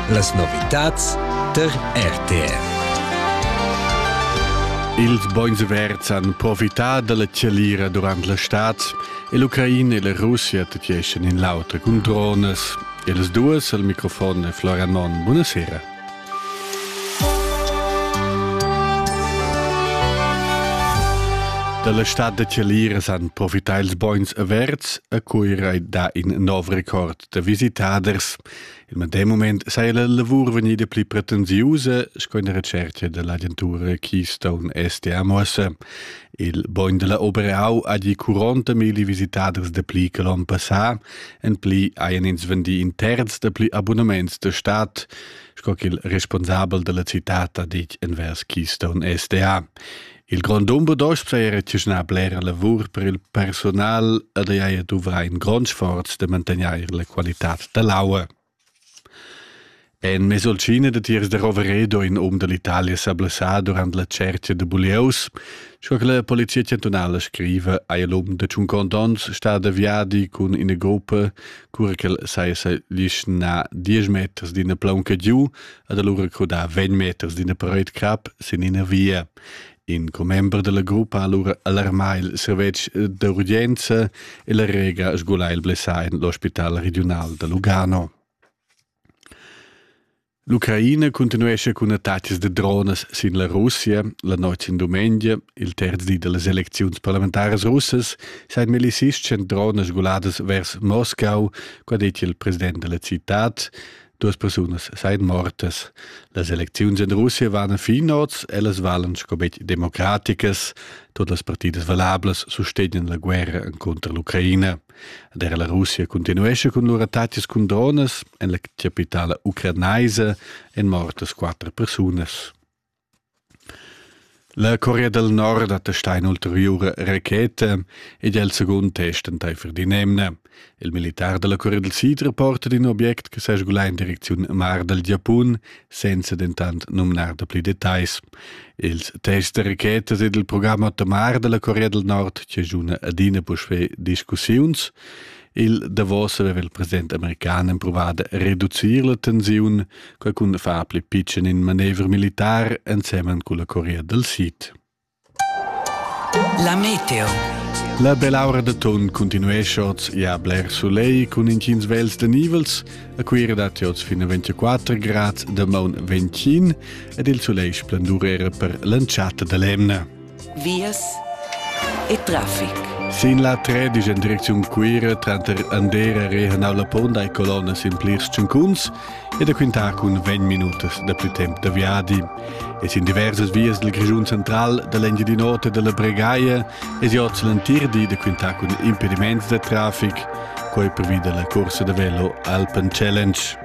Las novitads der RTR. Ils bogns verds han profità dalla chalira durant la stad e l'Ucraina e la Russia tetgeschan in l'auter cun dronas. E las duas al microfon è Florian Monn. Buonasera. Dalla stad da Tialiras han profità ils bogns averts a Cuira da in nov record da visitaders. Il medem moment saja la lavur vegnida pli pretensiusa sco in recerca dall'agentura Keystone STA Mossa. Il bogn dalla Oberau ha di 40.000 visitaders de pli che l'on passà En pli hajan ins vendì in terz da pli abunaments de stat, sco ch'il responsabel della cittad ha ditg envers Keystone SDA. Il grond Umbedost saja rechischnà blera lavur per il personal ed haja duvrà in grond sforz de mantegnair la qualitad dell'aua. En mesolcina datiers da Roveredo in um da l'Italia s'ha blessà durant la tschercha da bulieus. Sco che la polizia chantunala scriva, ha il um da tschunquant onns stà da viadi cun ina gopa, cura ch'el saja sa lischnà diesch meters d'ina plaunca giu ed alura crudà vegn meters d'ina paraid-crap sin ina via. In commember dalla gruppa ha allura alarmà il servetsch d'urgenza e la Rega sgulà il blessà en l'ospital regiunal da Lugano. L'Ucraina continuescha cun attacks de dronas sin la Russia la notg in dumengia, il terz di dallas elecziuns parlamentaras russas, sein milicists en dronas sguladas vers Moscau, qua detg il president della cittad, Duas persunas seien mortas. Las elecziuns in Russia van finots, ellas valen sco bet democraticas. Todas las partidas valablas sustegnen la guerra contra l'Ucraina. Der la Russia continuesce con lur attacchi con drones en la capitale ucranaisa en mortas quattro persunas. La Corea del Nord attesta in'ulteriura racheta ed è il secund test entaifer d'in'emna. Il militar da la Corea del Sid rapporta d'in obiect che s'è sgulà in direcziun mar dal Giapun, senza dentant numnar dapli detagls. Ils tests da rachetas ed il programm Otomar da la Corea del Nord giaschuna adina puspè discussiuns. Il davos aveva il president american empruvà da reducir la tensiun, quai cun far pli pitschen in manevra militar ensemen cun la Corea del Sid. La meteo. La bell'aura da ton continuesce oz ja bler soleil cun intgins vels da nivels, a cui redat oz fin a 24 grad da maun 25 ed il soleil splendur era per l'entschatta da l'emna. vias e traffic. Sin la 3 disch en direcziun Cuira tranter Andera, Rehanau, La Ponda e Colonna sin plirs tschincuns e da quintar cun 20 minutas da più temp da viadi. E sin diversas vias del Grischun central, dall'Engiadin'Ota e dalla Bregaia e si oz l'entir di da quintar cun impediments da traffic, quei previda la corsa da velo Alpen Challenge.